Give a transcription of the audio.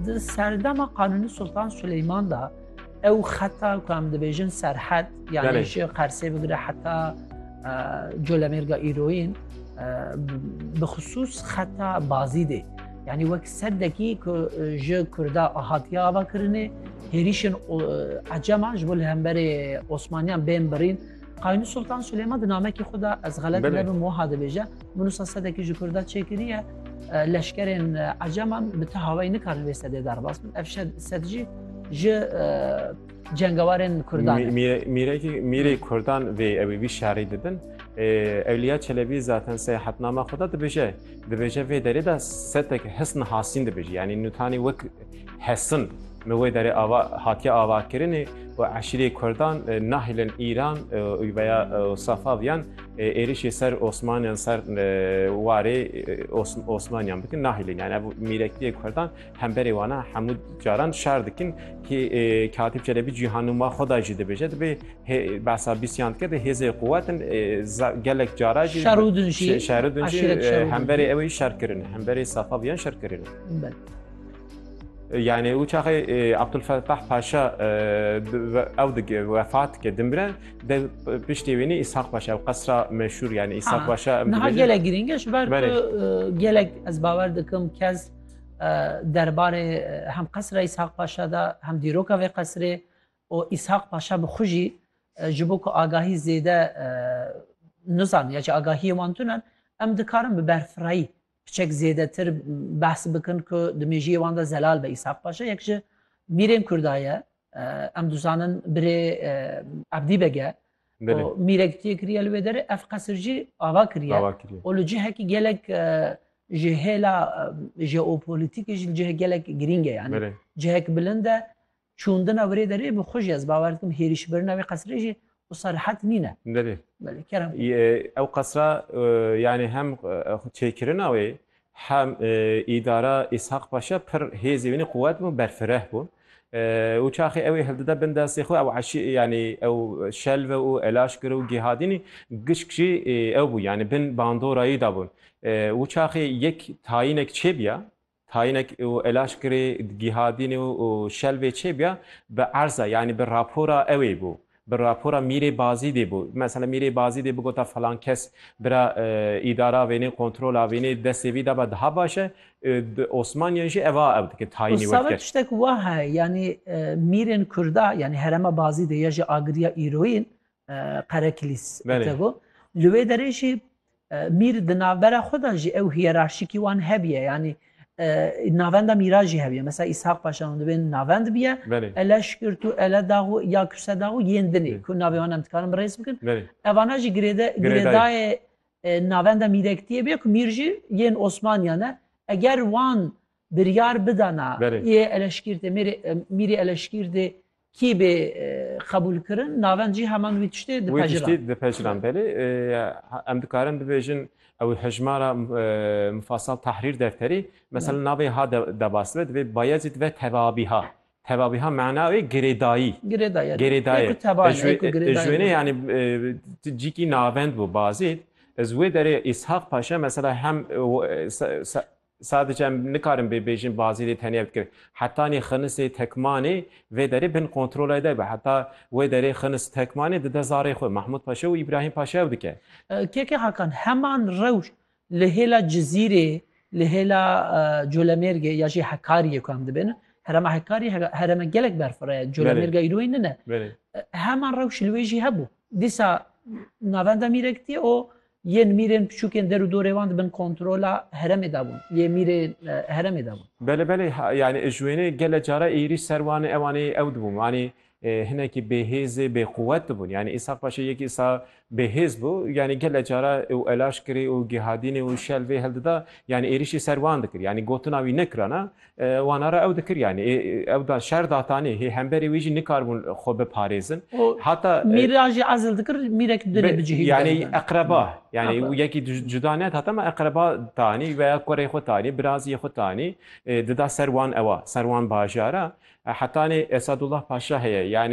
Di serdema Qanûnî Sultan Suleyman da ew xeta ku em dibêjin serhet yanî ji Qersê bigire heta Colemêrga îroyîn bi xisûs xeta bazî dê. Yani wek serdekî ku ji Kurda hatiye ava kirinê hêrîşên eceman ji bo li hemberê Osmaniyan bên birîn. Qanûnî Sultan Suleyman di namekî xwe da ez xelet nebim wiha dibêje. Mirusa sedekî ji Kurda çêkiriye leşkerên Ecaman bi ti havayî nikarin wê sedê derbas bin. Ev sed jî ji cengewarên Kurdan. Mîrê Kurdan vê ew ê vî şerî didin. Ewliya Çelebî zaten seyahatnama xwe de dibêje. Dibêje vê derê de setek hisn hasîn dibêje. Yanî nûtanî wek Hesin li wê derê ava hatiye avakirinê û eşîrê Kurdan nahilên Îran û veya Safaviyan êrişê ser Osmaniyan ser warê Osmaniyan bikin nahilên yani ev mîrektiyê Kurdan hemberê wana hemû caran şer dikin ki Katîb Çelebî cîhanûma xwe da jî dibêje dibê behsa bîsiyan dike de hêzê quwetin gelek cara jî şeridin jî hemberê ew şerkirin hemberê Safaviyan şerkirin. Yani û çaxê Abdulfetah Paşa ew dik vefat ke dimre de piştê wênî İshak Paşa ew qesra meşhur yani İshak Paşa niha gelek girîng e ji ber gelek ez bawer dikim kes derbarê hem qesra İshak Paşa da hem dîroka vê qesrê û İshak Paşa bi xwe jî ji bo ku agahî zêde nizan ya ji agahiyê wan tunan em dikarin bi berfirayî Hiçek zêdetir behs bikin ku di mêjiyê wan de zelal be Îshak Paşa yek ji mîrên Kurda ye. Em dizanin birê Ebdî beg e. Û mîrek tê kiriye li wê derê ev qesir jî ava kiriye. Û li cihekî gelek ji hêla jeopolîtîkê jî li cihek gelek girîng e. Yanî cihek bilind e. Çûndina wirê derê bi xwe jî ez bawer dikim hêrîşbirina wê qesirê jî wisa rihet nîn e. Belê. Belê, kerem. Ew qesira yanî hem çêkirina wê hem îdara Îshaq Paşa pir hêzê wînî quwet bû, berfireh bûn û çaxê ew ê hildide bin destê xwe ew eşî yanî ew şelve û elaşkir û gihadînî gişk jî ew bû yanî bin bandorayî de bûn û çaxê yek tayînek çêbiya Tayinek û Elaşkirê Gihadîn û Şelvê Çêbya bi erza yanî bi rapora ewê bû. Bi rapora Mîrê Bazîdê bû. Mesela Mîrê Bazîdê bigota filan kes bira îdara vênê, kontrola vênê, destê vî daba diha baş e. Di Osmaniyan jî eva ev dike tayinî werdike. Sabit tiştek wa heye yanî mîrên kurda yanî herema Bazîdê ya jî agiriya îroyîn Qerekilîs Tego. Li wê derê jî mîr di navbera xwe de jî ew hiyerarşîkî wan hebiye yanî navenda mîra jî hebiye. Mesela Îshak Paşa hûn dibên navend biye ele şikirt û ele dax û ya kuse dax û yên din ê ku navê wan em dikarin bi rêz bikin. Evana jî girêde girêdayê navenda mîrektiyê bê ku mîr jî yên Osmaniyan e. Eger wan biryar bidana yê eleşkîrtê mîrê eleşkîrtê Kî bê qebûlkirin navend jî heman wî tiştê dipejira. Wî tiştê dipejira belê. Em dikarin bibêjin ew hejmara mufasal tahrîr defterî mesela navê ha debasve divê Bayezîd ve tevabîha. Tevabîha mena wê girêdayî. Girêdayî. Girêdayî. Ji wênê yanî cîkî navend bû Bazîd. Ez wê derê Îshak Paşa mesela hem Sadic em nikarin bê bêjin Bazîlê tenya bikir. Hetanî Xinisê Tekmanê vê derê bin kontrolay de be. Heta wê derê Xinis Tekmanê dide zarê xwe Mahmûd Paşa û Îbrahîm Paşaya û dike. KK Hakan heman rewş li hêla Cizîrê, li hêla Colemêrgê ya jî Hekariyê ku em dibêjin. Herema Hekariyê hereme gelek berfireh ye. Colemêrga îroyê nine. Heman rewş li wê jî hebû. Dîsa navenda Mîrekitiyê û. Yên mîrên piçûkên der û dorê wan di bin kontrola heremê de bûn. Yê mîrê heremê de bûn. Bele bele yani ji wênê gele cara êrîş ser wan ê ewan ê ew dibûn wanî hinekî bêhêzê bêquwet dibûn yani Îshak Paşa yekî îsa bêhêz bû yani gele cara û elaş kirî û gihadînê û şel vê hildida yani êrîşî ser wan dikir yani gotina wî nekirana Wana re ew dikir yanî ew da şer datanî hê hemberê wî jî nikaribûn xwe biparêzin. Hata Mîr a jî ezil dikir mîrek dilê bicihî bide. Yanî eqreba yanî yekî cuda ne hata me eqreba tanî veya kurê xwe tanî biraziyê xwe tanî dida ser wan ewa ser wan bajara hetanê Esadullah Paşa heye yanî